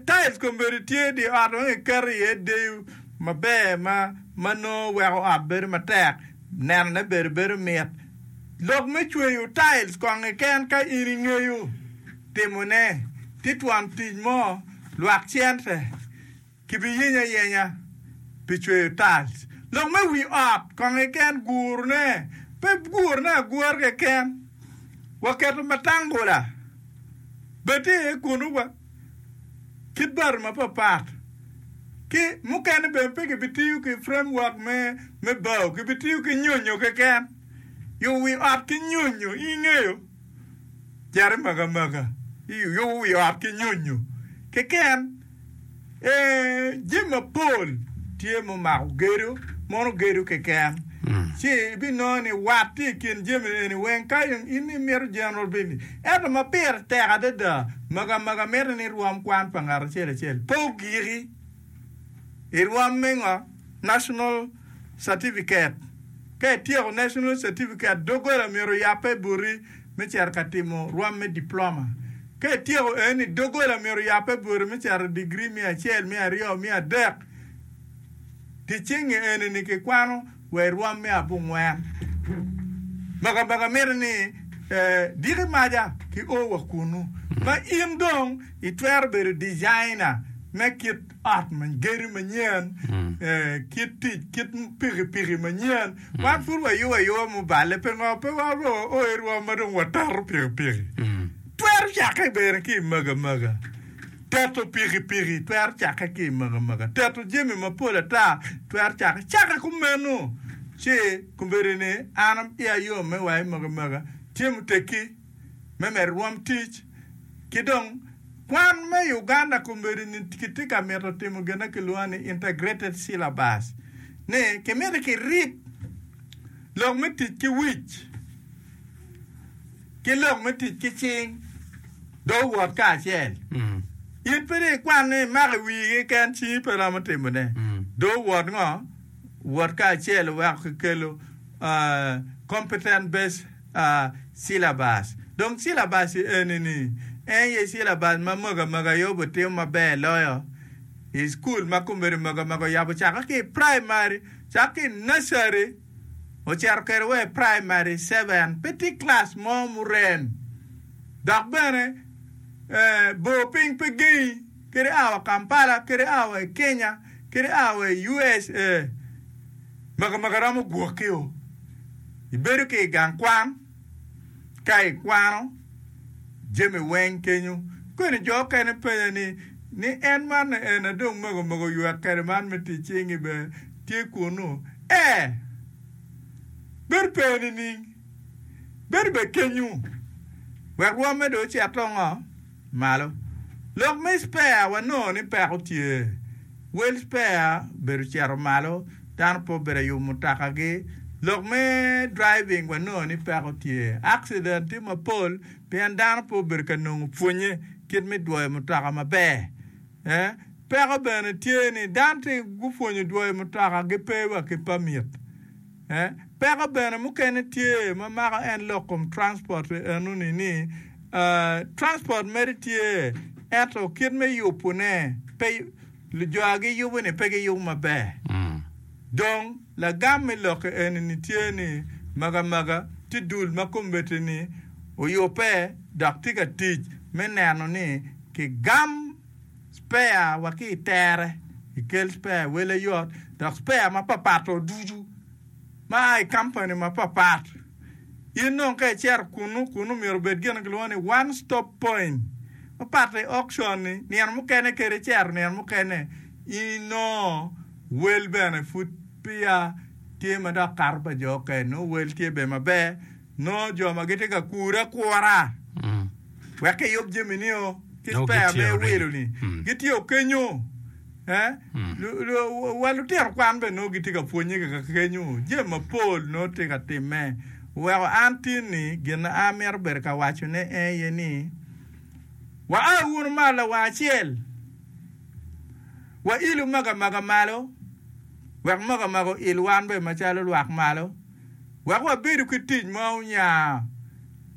Tail kombeddi tye dye ot ma kiketo iye deyo maber ma nongo weko ot bedo matek nenone bene bedo mit. Lok me cweyo tail kong keken ka in ingeyo timone ti twon tic mo lwak cente. Kibiyenya ayenya pi cweyo tiles. Lok me wi ot kong keken gurone pe gurone agura keken. Waketo matangula bati aye kunu wa kit bati mapapat. Ki mukene bene pe kibitiyo ki frame work me bao kibitiyo ki nyonyo keken. Yubo wi ot ki nyonyo in ngeyo cito i maga maga yubo wi ot ki nyonyo keken. Ee, jami mapol tye ma omako gedo, mono gedo keken. Ci ibinongo ni wat tye i kin jami eni weng ka in imito General Bindi. Ento ma pire tek adada, mega mega mitte ni irwom kwan pa ngat acel acel. Pe ogiki. Irwom me ngo? National Certificate. Ka ityeko National Certificate, doggola myero oyabbe buti. me cito ka timo rwam me diploma. Ka ityeko eni, doggola myero oyabbe boti me cito digri me acel, me aryo, me adek. Dyeceng-nge eni-ni kikwano wa i rwam me abongwen. Makabaka mitte ni diki maja ki o wa kunnu ma in dong itwero bedo dijaina me kit ot ma gedo manyen, kit tic, kit pikipiki manyen. Wan pud wayubo ayuba muballe, pingo pe waro oerwa ma dong wateto pikipiki? Twero cakke bene ki i magamaga. Teto pikipiki twero cakke ki i magamaga. Teto jami mapol ata twero cakke. Cakke kumeno ci kombeddi ni an aye ayom me wa i magamaga. Tye muteggi? me medo rwom tic, ki dong kwan me Uganda komedo ni kitye ka mito timo gin ma kilwongo ni Integrated Syllabus ni kimito kirib lok me tic ki wic ki lok me tic ki cing dong owot kacel. In pe dong ikwan ni imako i wiyi keken cingi pe romo timone. Dong owot ngo? Owot kacel oweko kikelo ah, competent based. Cilabas. Dong cilabas eni-ni en aye cilabas ma Mwaka Mwaka aye obitimo maber loyo i cukul ma Kombeddi Mwaka Mwaka oyabo cake ki i praimari, cako ki i nursery ocito kwede wa i praimari seven. Pe tye kilac mo murem dok bene bor piny pe gengi. kadi aa wa Kampala, kadi aa wa i Kenya, kadi aa wa i USA. Maka maka romo gwoki o. Ibedo ki i gang kwan ka ikwano jami weng kenyo. Kweni jo okene penye ni, ni en man ni en a dong maka maka oywek kede man me tic cingi be tye kunu? Ee. Bedo pe nining? Bedo be kenyu. Wek rwomme do ocet to ngo? malo. Lok me spare wanongo ni peko tye. Wel spare obedo ocito malo, dano pe obedo ayub mutakagi. Lok me driving wanongo ni peko tye. Accident tye mapol pien dano pe obedo ka nongo pwonye kit me dwoyo mutoka maber. Peko bene tye ni dano tye gupwonyo dwoyo mutoka gipe wa ki permit. Peko bene mukene tye ma mako en lok kom transport pi enoni ni, Transport mere tye ento kit me yubu ne pe lujo a gi yubu ni pe gi yubu maber. Dong lagam me lokke eni ni tye ni maga maga tye dul ma kombeti ni oyube dok tye ka tic me neno ni ki gam. spare wa ki i tere, ikel spare wele yot dok spare mapat pat o ducu ma a i company mapat pat. In dong ka icito kunu, kunu myero obed gin ma kilwongo ni one stop point mapat i auction ni nino mukene kadi icito nino mukene inongo wel bene pud peya tye madok kato pa jo oken nongo wel tye bene maber Nongo jo ma gitye ka kure akura wek kiyub jami nio ki spare me wilo ni gitye kenyo. Wa lutino kwan bene nongo gitye ka pwonye kika kenyo. Jami mapol nongo tye ka timme. Weko an tin ni gin a mito bedo ka waco ne aye ni wa a wunu malo lawang acel wa ilu maga maga malo wek maga maga oil wan bene macalo lwak malo. wek wabedo ki tic ma onya,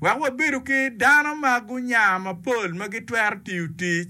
wek wabedo ki dano ma gunya mapol ma gitwero tiyo tic.